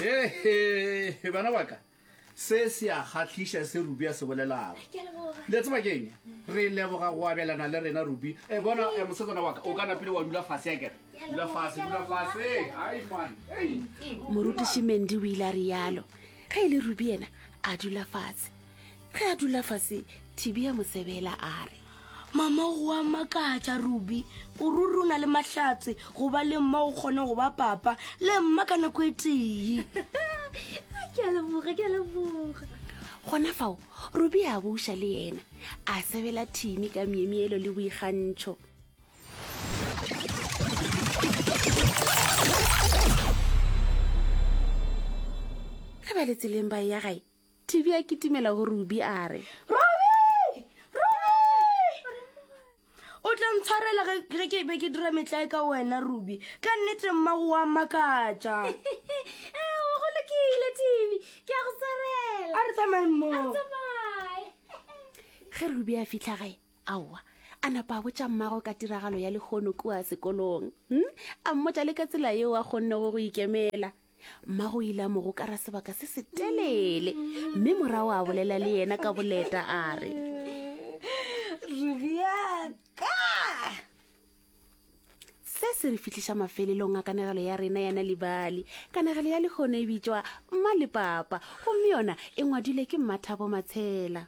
hehe bana baka se se a kgatlhiša se rubi a se bolelago le tseba keng re leboga go abelana le rena rubi e bona e mosetsana waka o ka napile wa dula fase ya kere dula fase dula fase ai man morutiši mendi o ile a rialo ge e le rubi yena a dula fatshe ge a dula fase thibi ya mosebela a re mama go wa makatša ruby o ruri o na le mahlatse go ba le mma o kgone go ba papa le mma ka nako e tee ke a leboga ke a leboga gona fao ruby a buša le yena a sebela thimi ka miemielo le boikgantšho ge ba le tseleng ba ya gae Tibi a kitimela go Ruby a re. Ruby! Ruby! O tla ntshwarela ge ge ke be ke dira metlae ka wena, Ruby. Ka nnete mmago wa makatša. Ao, go lokile, Tibi. Ke a go tshwarela. A re tsamaye A mmogo. re tsamaye. Ge Ruby a fihla gae, aowa, a napa a botša mmago ka tiragalo ya lehono kua sekolong. Hm? A mmotša le ka tsela yeo a kgonnego go ikemela. mmago o ile a mo gokara sebaka se se telele mme morago a bolela le yena ka boleta a re rubjaka se se re fitlhiša mafelelong a kanegelo ya rena yana libali kanegelo ya lekgono e bitšwa mma le papa gomme yona e ngwadile ke mmathabo matshela